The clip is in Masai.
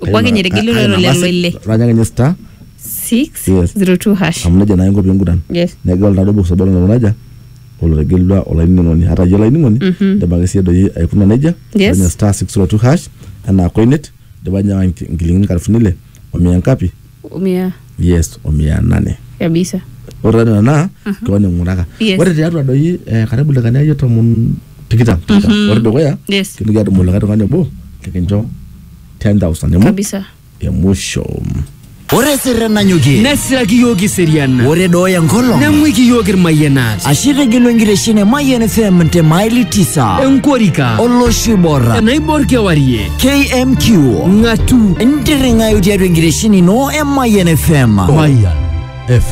opuo ake ninye etigili Ah, ah, lelo nang'asa- lelo ile Ranya ake ninye star six Yes. zero two hash amu nejia naa inko piinguran yes negel oltado box obo lelo raja olotegelua olainining'oni hata iyie olainining'oni indim ake siyie doi aikuna nejia Yes. Ranya star 602 hash anaa koinet indipa ninye aawa inki- inchilingini nkalifuni ile omia ngapi Omia yes o mia nane kabisa. ore taa nena naa keon ing'uraka Yes. ore tiatua doi eh, karibu lekani akeyie tomon tikitam tikitam ore dukuya Yes. kintoki adumu likae tung'ani obo likincho 10000 emu Kabisa. emusho Ore sirre nanyokie. Nesiraki yiok iserian. Ore dooya enkolong. Neng'uiki yiok irmayianat. Ashe itegelu enkitesheni e Mayian FM te maili tisa. Enkorika. Olosho oibor. Enaibor kewarie. KMQ ng'atu ntirring'ayu tiatua enkitesheni ino e Mayian FM. Mayian FM.